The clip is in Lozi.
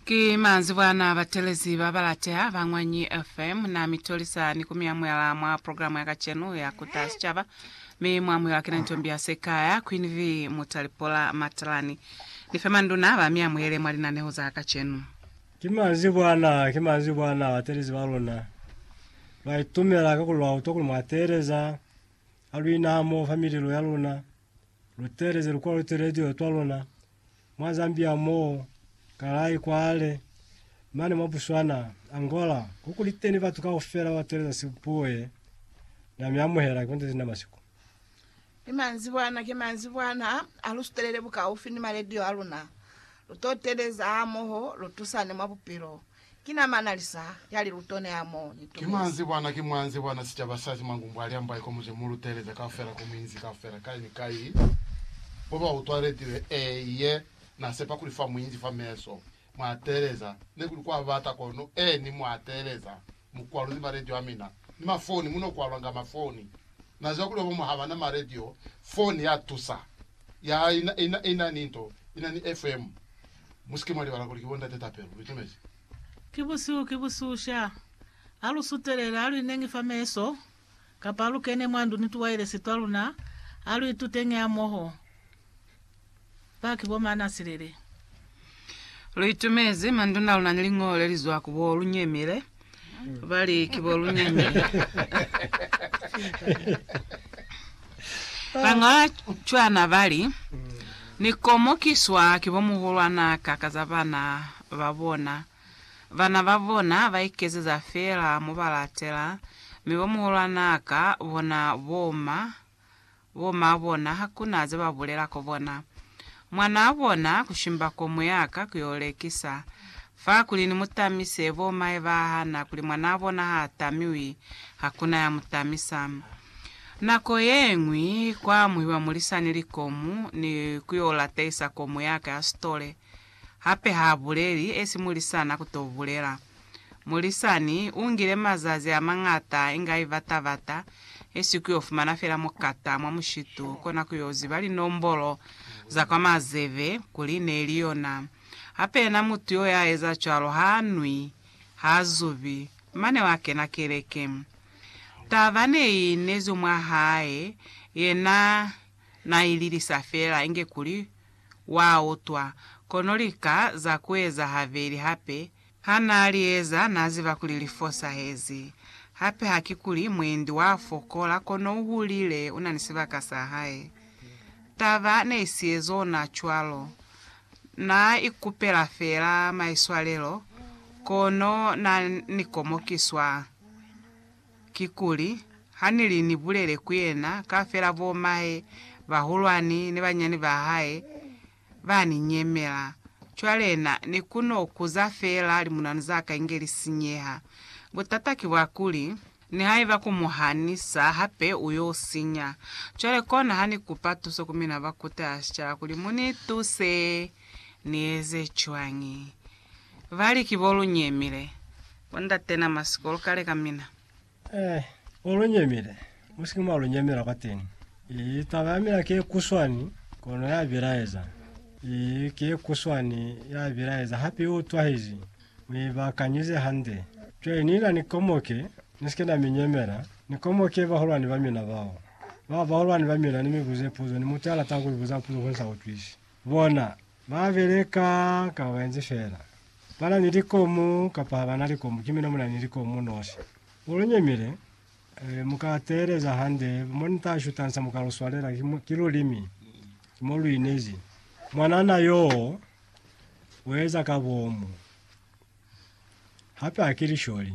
Ki manzwi bwa na batelezi ba balateha ba Ñwanyi FM. Na mi tolisa ni ku mi amuhela mwa programa ya kacenu ya Kuta Sicaba. Mi mu amuhelwa ki na Ntombi ya Sekaya, Queen V. Mutalipola Matalani. Ni fe manduna ba mi amuhele mwa linaneho za kacenu. Ki manzwi bwa na, ki manzwi bwa na batelezi ba luna. Lwa itumela ka kuli lwa utwa kuli mwa teeleza ha lu ina hamoho fa mililo ya luna, lu teeleze lukwaluteledio twa luna, mwa Zambia mo, Kalay kwale, mane mwa Botswana, Angola, kokuliteni batu kaufela ba teeleza sibuye na mi amuhela ki bonte sina masiku. Ni manzibwana ki manzibwana ha lu sutelele bukaufi ni maledio a luna, lu to teeleza hamoho, lu tusane mwa bupilo. Ki na mana lisa ya liluto ne a mo ni Ki mwa nzi bwana, ki mwa nzi bwana sicaba sa Simangumbu a liamba iko mu ze mu luteleza kaufela ku minzi kaufela kai ni kai mo ba utwaletiwe? Ee, ye na sepa kuli fa muinzi fa meso mwa teleza, ne kuli kwa bata kono, ee, ni mwa teleza. Mukwalo ni maradio amina ni mafoni muno kwalwa nga mafoni. Nazwa kuli babamu habana maradio, foni ya tusa. Ya ina, ina, ina ni nto, ina ni FM. Musike mwa libala kuli ki bo Ndate Tapelo. Lu tumezi? Ki busihu, ki busihu sha. Ha lu sutelele, ha lu ineñi fa meso. Kapa alukene mwa ndu ni tuwailesi twaluna, aluitutenge hamoho. Baki bo Maana Silele. Luitumezi manduna aluna ni liñolo lelizwa ku bo Lunyemile, bali ki bo Lunyemile. Bañola cwana bali, Ni komokiswa ki bo muhulwanaka ka za bana babona. Bana ba bona ba ikezeza feela mo ba latela, mi bo muhulwana ka bona bo ma, bo ma bona ha ku na ze ba bulela ko bona. Mwanaa bona ku shimba ko mwe ya ka ku yo lekisa. Fa kuli ni mu tamise, bo mahe ba hana kuli mwanaa bona ha tamiwi, ha ku na ya mu tamisa. Nako ye ñwi kwa amuhiwa mulisani likomu ni ku yo latehisa komu ya ka ya sitole. Hape ha buleli esi mulisana ku to bulela. Mulisani u ngile mazazi a mañata inga i bata-bata, esi ku yo fumana fela mukata mwa mushitu, kona ku yo ziba linombolo za kwa mazebe kuli ne li yona. Hape yena mutu yo ya eza cwalo ha nwi, ha zubi, mane wa kena keleke. Taba ne i inezwi mwa hae, yena na i lilisa fela inge kuli Wa utwa. Kono lika za kueza habeli hape. Ha naa li eza, naa ziba kuli li fosahezi. Hape hakikuli mwendi wa fokola, kono u hulile, una ni sibaka sa hae. Taba ne i si ezo ona cwalo. Naa ikupela feela maiswalelo, kono naa ni komokiswa. Kikuli, ha ni li ni bulele ku yena, kaufela bo mahe bahulwani ni banyani ba hae ba ni nyemela. Cwale na ni ku no kuza feela limunanu za ka inge li sinyeha. Butata ki bwa kuli, nihaiba ku mu hanisa hape u yo sinya. Cwale kona ha ni kupa tuso ku mina ba kuta ya sicaba kuli mu ni tuse. Ni eze cwañi? Vali, Ki bo lu nyemile. Bo ndate na ma siko lu kale ka mina. Eh, bo lu nyemile. Mu sike mwa lu nyemela kwateni. Ii, taba ya mina ki ye kuswani, kono ya bilaeza. Ii, ki ye kuswani, ya bilaeza, hape i utwahizi. Mu i bakanyize hande. Cwale ni na ni komoke, ni sike na mi nyemela, ni komoke bahulwani ba mina bao. Ba bahulwani ba mina, ni mi buze puzo, ni mutu ya latago ku mi buza puzo ku nsa utwisi. Bona, ba beleka ka baenzi feela. Ba na ni likomu kapa ha ba na likomu, ki mina mu na ni likomu nosi. Mu lu nyemile, mu ka teeleza hande, mo ni ta shuta nsa mu ka lu swalela, ki lulimi, ki mo lu inezi. Mwanana yoo u eza ka bomu, hape ha ki lisholi.